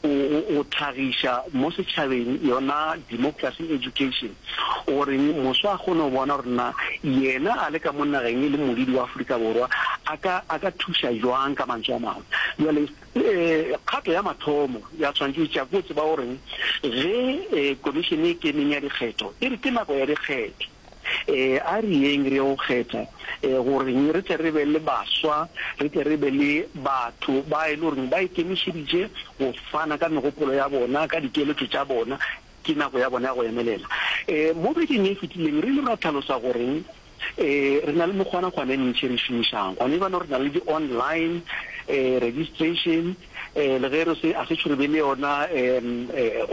o, o, o tlhagiša mo setšhabeng yona democracy education, o reng moswa a kgone go bona gore na yena a le ka mo nageng e le modidi wa Afrika Borwa a ka, a ka thuša jwang, ka mantšu a mangwe. Bjale um kgato ya mathomo ya tshwanetše e tšea ke go tseba o reng ge um komišene e Keneng ya Dikgetho e re ke nako ya dikgetho, A re yeng re ye go kgetha gore re tle re be le baswa, re tle re be le batho ba e le goreng ba ikemišeditše go fana ka megopolo ya bona, ka dikeletšo tša bona. Ke nako ya bona ya go emelela. Mo bekeng ye e fetileng re ile ra tlhalosa gore re na le mekgwanakgwana e mentši e re e šomišago. Gona lebanong re na le di-online registration. eh, le ge re se a se tšhurebe le yona um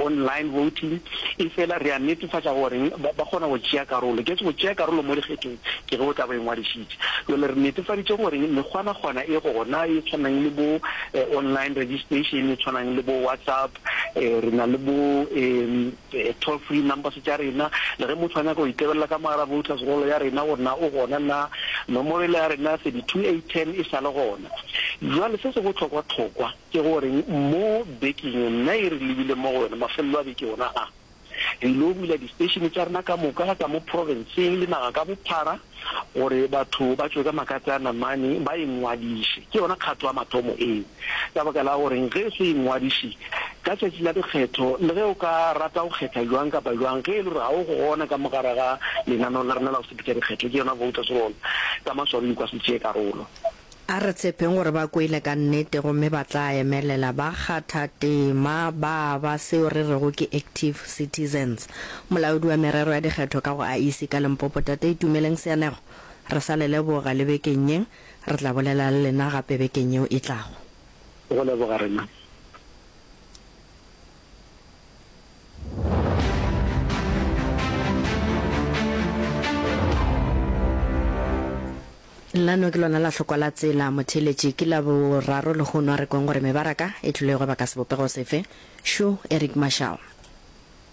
online voting e fela re a netefatša goreng ba kgona go tšea karolo ke go tšea karolo mo dikgethong ke ge o tla bo e ngwadišitše jale re netefaditše goreng mekgwanakgwana e gona e tshwanang le bo eh, online registration e tshwanang le bo whatsapp um re na le bo um toll free numbers tša rena, le ge motho a nyaka go itebelela ka mogala voters roll ya rena gore na o gona na, nomoro ele ya rena ya 32810 e sa le gona. Bjale se se bohlokwa-hlokwa ke gore mo bekeng ye nna e re lebile mo go yona, mafelelo a beke wona a, re ylo bula di station tša rena ka moka ka mo province-ng le naga ka bophara, gore batho ba tšwe ka makatse a namane ba ingwadiše. Ke yona kgato ya mathomo eo. Ka baka la goreng ge se ingwadiše ka tšatši la dikgetho, le ge o ka rata go kgetha bjang kapa bjang, ge e le gore ga o gona ka mo gare ga lenaneo la rena la go sepetša dikgetho, ke yona voters roll, ka maswabi o ka se tšee karolo. A re tshepeng gore ba kwele ka nnete gomme ba tla emelela ba kgatha tema ba ba seo re rego ke active citizens. Molaodi wa merero ya dikgetho ka go IEC ka Limpopo Tate Itumeleng Seanego re sa le leboga le bekeng ye, re tla bolela le lena gape bekeng yeo e tlago. Go leboga re mang? Lano ke lona la hlokwa la tsela motheeletši ke la boraro lehono a re kweng gore mebaraka e tlilwego baka sebopego sefe. Shu, Eric Marshall.